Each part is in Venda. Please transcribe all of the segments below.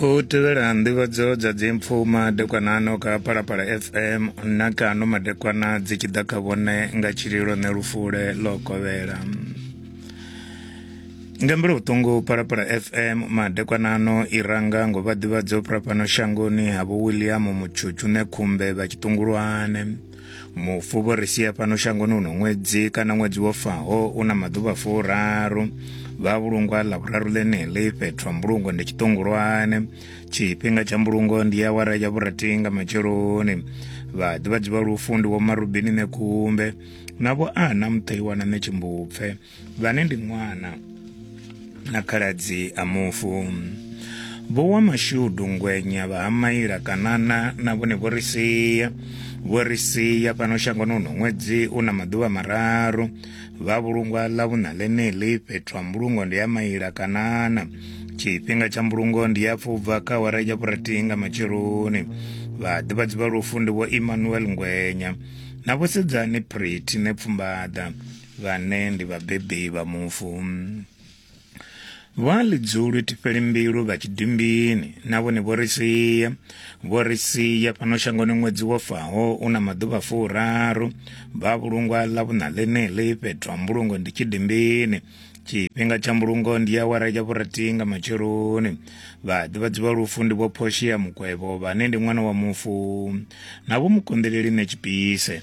u tevhela nḓivhadzo dza dzimpfu madekwanano kha palapala fm na kano madekwana dzi tshi ḓa kha vhone nga tshililo ne lufule ḽo kovhela nga mbilo vhuṱungu palapala fm madekwanano i ranga ngo vha ḓivhadzo phuraphano shangoni ha vho william mutshutshune khumbe vha tshiṱungulwane mufu vho ri sia fhano shangoni uno ṅwedzi kana ṅwedzi wo faho u na maḓuvha furaru vha vhulungwa ḽa vhuraru ḽeneḽi fhethu ha mbulungo ndi tshiṱongolwane tshifhinga tsha mbulungo ndi ya wara ya vhurati nga matsheloni vha ḓivhadzi vha lufu ndi vho marubini nekumbe na vho ana muṱaiwana ne tshimbupfe vhane ndi ṅwana na khaladzi a mufu vho wa mashudu ngwenya vha ha maila kanana na vhone vho ri sia vho ri sia fhano shangoni uno ṅwedzi u na maḓuvha mararu vha vhulungwa ḽa vhuṋa ḽeneḽi fhethu ha mbulungo ndi ya maila kanana tshifhinga tsha mbulungo ndi ya pfubva kha awara ya vhurathi nga matsheloni vhaḓivhadzi vha lufu ndi vho emmanuel ngwenya na vhosedzani pretty ne pfumbaḓa vhane ndi vhabebi vha mufu. Vha Lidzulwi Tipelimbilu vha Tshidimbini na vhone vho ri sia. Vho ri sia fhano shangoni ṅwedzi wo faho u na maḓuvha furaru. Vha vhulungwa ḽa vhuṋa ḽeneḽi fhethu ha mbulungo ndi Tshidimbini. Tshifhinga tsha mbulungo ndi awara ya vhurathi nga matsheloni. Vhaḓivhadzi vha lufu ndi vho Portia Mukwevho vhane ndi ṅwana wa mufu na vho Mukonḓeleli Netshipise.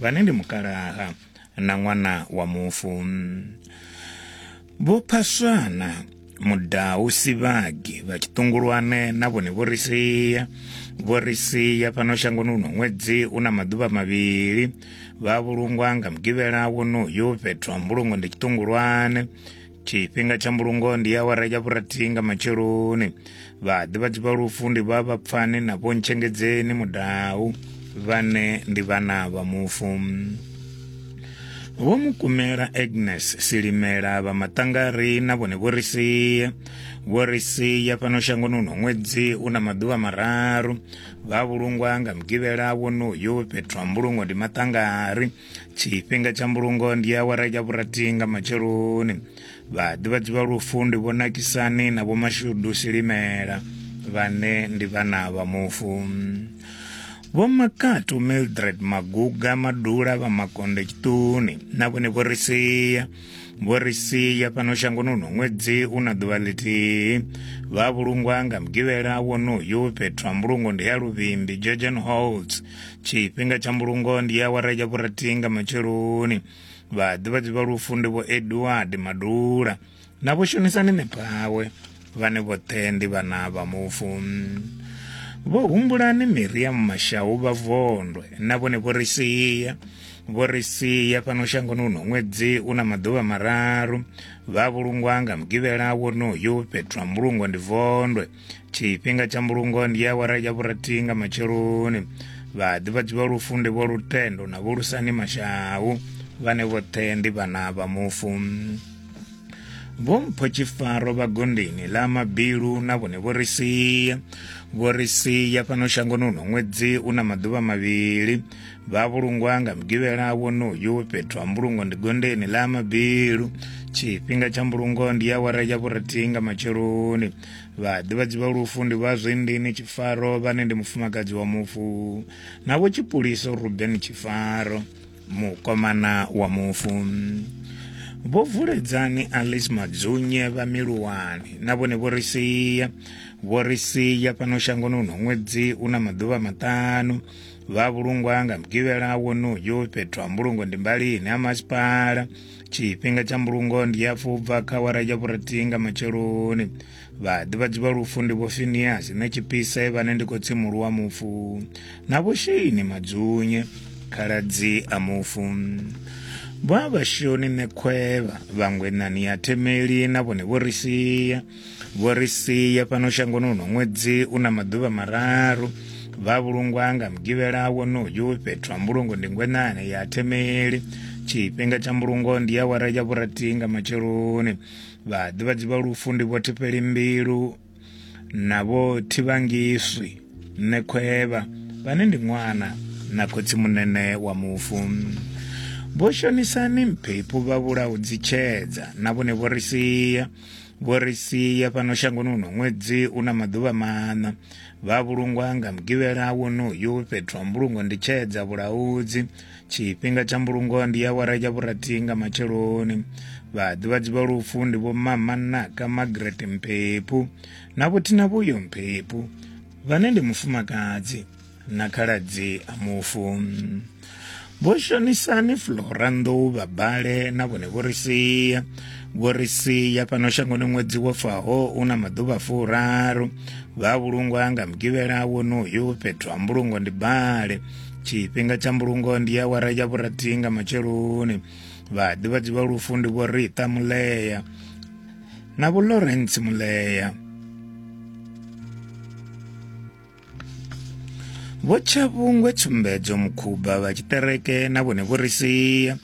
vhane ndi mukalaha na ṅwana wa mufu vho phaswana mudau sivhagi vha tshiṱungulwane na vhone vho ri sia vho ri sia fhano shangoni uno ṅwedzi u na maḓuvha mavhili vha vhulungwa nga mugivhela wonoyo fhethu ha mbulungo ndi tshiṱungulwane tshifhinga tsha mbulungo ndi awara ya vhurathi nga matsheloni vhaḓivhadzi vha lufu ndi vha vhapfani na vhontshengedzeni mudau vhane ndi vhana vha mufu vho mukumela agnes silimela vha maṱangari na vhone vho ri sia vho ri sia fhano shangoni uno ṅwedzi u na maḓuvha mararu vha vhulungwa nga mugivhela wonoyu fhethu ha mbulungo ndi maṱangari tshifhinga tsha mbulungo ndi awara ya vhurathi nga matsheloni vhaḓivhadzi vha lufu ndi vho nakisani na vho mashudu silimela vhane ndi vhana vha mufu vho makatu mildred maguga madula vha makonde tshiṱuni na vhone vho ri sia vho ri sia fhano shangoni uno ṅwedzi u na ḓuvha ḽithihi vha vhulungwa nga mugivhela wonoyu fhethu ha mbulungo ndi ya luvhimbi georgian holds tshifhinga tsha mbulungo ndi awara ya vhurathi nga matsheloni vhaḓivhadzi vha lufu ndi vho edward madula na vho shonisani nepawe vhane vhoṱhe ndi vhana vha mufu vho humbulani miriamu mashau vha vondwe na vhone vho ri sia vho ri sia fhano shangoni uno ṅwedzi u na maḓuvha mararu vha vhulungwa nga mugivhela wonoyu fhethu ha mbulungo ndi vondwe tshifhinga tsha mbulungo ndi awara ya vhurathi nga matsheloni vhaḓivhadzi vha lufu ndi vho lutendo na vho lusani mashau vhane vhoṱhe ndi vhana vha mufu vho mpho tshifaro vha gondeni ḽa mabilu na vhone vho ri sia vho ri sia fhano shangoni uno ṅwedzi u na maḓuvha mavhili vha vhulungwa nga mugivhela wonoyu fhethu ha mbulungo ndi gondeni ḽa mabilu tshifhinga tsha mbulungo ndi awara ya vhurathi nga matsheloni vhaḓivhadzi vha lufu ndi vha zwindini tshifaro vhane ndi mufumakadzi wa mufu na vho tshipuliso ruben tshifaro mukomana wa mufu vho vuledzani alice madzunye vha miluwani na vhone vho ri sia vho ri sia fhano shangoni uno ṅwedzi u na maḓuvha maṱanu vha vhulungwa nga mugivhela wonoyo fhethu ha mbulungo ndi mbalini ha masipala tshifhinga tsha mbulungo ndi hafhu bva kha wara ya vhurathihi nga matsheloni vhaḓivhadzi vha lufu ndi vho finiasi na tshipise vhane ndi khotsi muhulu wa mufu na vho sheini madzunye khaladzi a mufu vha vhashoni ṋekhwevha vhangwenani ya themeli na vhone vho ri sia vho ri sia fhano shangoni uno ṅwedzi u na maḓuvha mararu vha vhulungwa nga mugivhela wonoyu fhethu ha mbulungo ndi ngwenane ya themeli tshifhinga tsha mbulungo ndi ya wara ya vhurathi nga matsheloni vhaḓivhadzi vha lufu ndi vho thifheli mbilu na vho thivhangiswi nṋe khwevha vhane ndi ṅwana na khotsi munene wa mufu vho shonisani mphephu vha vhulaho dzitshedza na vhone vho ri sia vho ri sia fhano shangoni uno ṅwedzi u na maḓuvha maṋa vha vhulungwa nga mugivhela wonoyu fhethu ha mbulungo ndi tshedza vhulaudzi tshifhinga tsha mbulungo ndi ya wara ya vhurathi nga matsheloni vhaḓivhadzi vha lufu ndi vho mamanaka margaret mphephu na vhothina vhuyo mphephu vhane ndi mufumakadzi na khaladzi a mufu vho shonisani flora nḓou vha bale na vhone vho ri sia vho ri sia fhano shangoni ṅwedzi wo faho u na maḓuvha furaru vha vhulungwa nga mugivhela wonoyu fhethu ha mbulungo ndi bale tshifhinga tsha mbulungo ndi awara ya vhurathi nga matsheloni vhaḓivhadzi vha lufu ndi vho rita mulea na vho lawrence mulea vho tshavhungwe tsumbedzo mukhuba vha tshiṱereke na vhone vho ri sia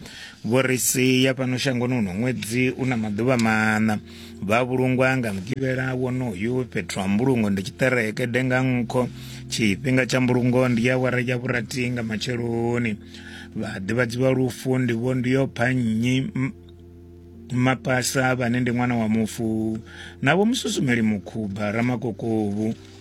vho ri sia fhano shangoni uno ṅwedzi u na maḓuvha maṋa vha vhulungwa nga mugivhela wonoyu fhethu ha mbulungo ndi tshiṱereke denga nkho tshifhinga tsha mbulungo ndi ya wara ya vhurati nga matsheloni vha ḓivhadzi vha lufu ndi vho ndi yo pha nnyi mapasa vhane ndi ṅwana wa mufu na vho mususumeli mukhuba ramakokovhu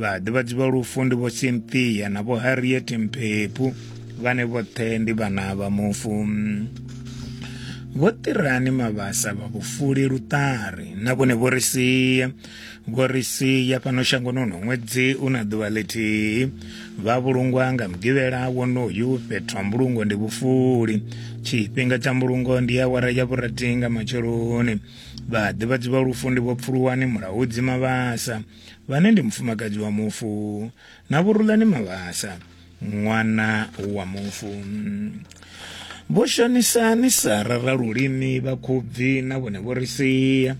vhaḓivhadzi vha lufu ndi vho cynthia na vho harriet mphepu vhane vhoṱhe ndi vhana vha mufu vho ṱirani mavhasa vha vhufuli luṱari na vhone vho ri sia vho ri sia fhano shangoni uno ṅwedzi u na ḓuvha ḽithihi vha vhulungwa nga mugivhela wonoyu fhethu ha mbulungo ndi vhufuli tshifhinga tsha mbulungo ndi awara ya vhurathi nga matsheloni vhaḓivhadzi vha lufu ndi vho pfuluwani mulaudzi mavhasa vhane ndi mufumakadzi wa mufu na vhurulani mavhasa ṅwana wa mufu vho shonisa ni sa rara lulimi vha khubvi na vhone vho ri sia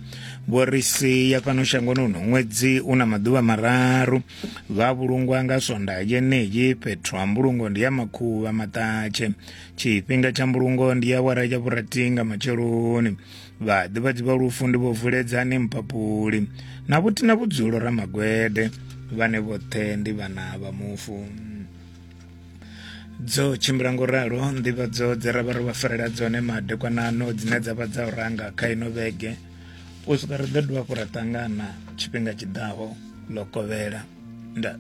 vho ri sia fhano shangoni uno ṅwedzi u na maḓuvha mararu vha vhulungwa nga swonda yeneyi fhethu ha mbulungo ndi ya makhuvha maṱatshe tshifhinga tsha mbulungo ndi ya wara ya vhuratinga matsheloni vhaḓivhadzi vha lufu ndi vho vuledzani mpapuli na vhuthi na vhudzulo ramagwede vhane vhoṱhe ndi vhana vha mufu dzo tshimbila ngo ralo nḓivhadzo dze ra vha ro vha farela dzone madekwanano dzine dza vha dza u ranga kha ino vhege u swika ri ḓo dovha hafhu ra ṱangana tshifhinga tshiḓaho ḽo kovhela nda